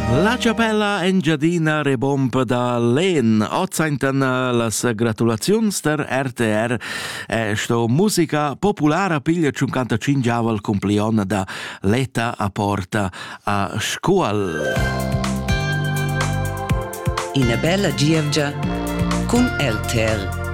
La chapella Engiadina rebomba da Len. Ozaintan las gratulaziuns der RTR e sto musica populara piglia 55 aval cumplion da Leta a Porta a Scuol. Ina bella gievgia cun LTR.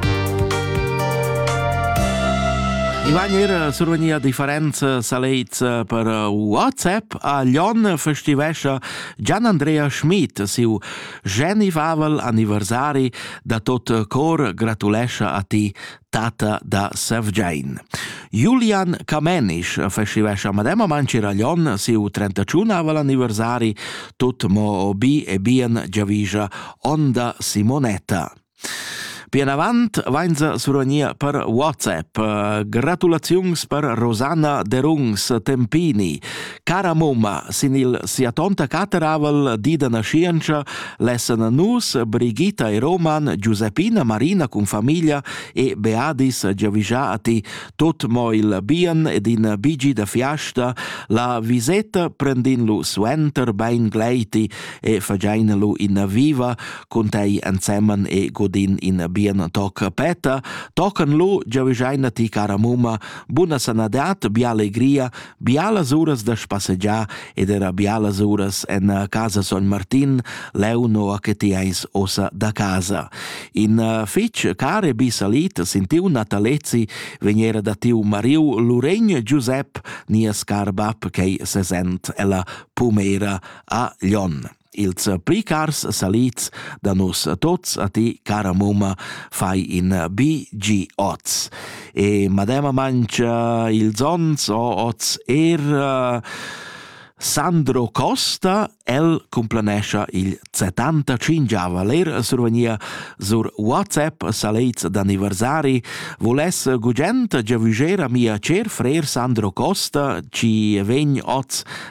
Iván era survenia differenza saleits per WhatsApp a Lyon festivescha Gian Andrea Schmid siu genivavel anniversari da tot cor gratulescha a ti tata da Sevgein. Julian Camenisch festivescha mademma Mancir a Lyon siu 31avel anniversari tot mo bi e bien giavischa Onda Simonetta. Pianavant vainsa suranir per WhatsApp. Gratulaziuns per Rosanna Derungs Tempini, cara momma, sin il sia tonta cateravel di da nascienza lessan nus Brigitta e Roman, Giuseppina, Marina cun famiglia e Beadis Giavigiati tot mo il bien ed in bigi da fiasta la visetta prendin lu suenter bein gleiti e fagein lu in viva cun tei ensemen e godin in bien toc peta, tocan lu giavischeina ti cara mumma, buna sanadat, bia allegria, bialas uras da spassegiar ed era bialas uras en casa Son Martin, leu noa che ti eis ossa da casa. In fitg care bi salit sin tiu natalezi vegnera da tiu mariu Luregn Giusep, nia scar bab che sesent ella pumera a Lyon. Ils pli cars salids da nus tots a ti, cara mumma, fai in BG oz. E madema mangia ils ons o oz er uh, Sandro Costa, el complanescha il 75 ler survenia sur WhatsApp salets d'anniversari, voless gugent giavügera mia cer frer Sandro Costa, ci vegn oz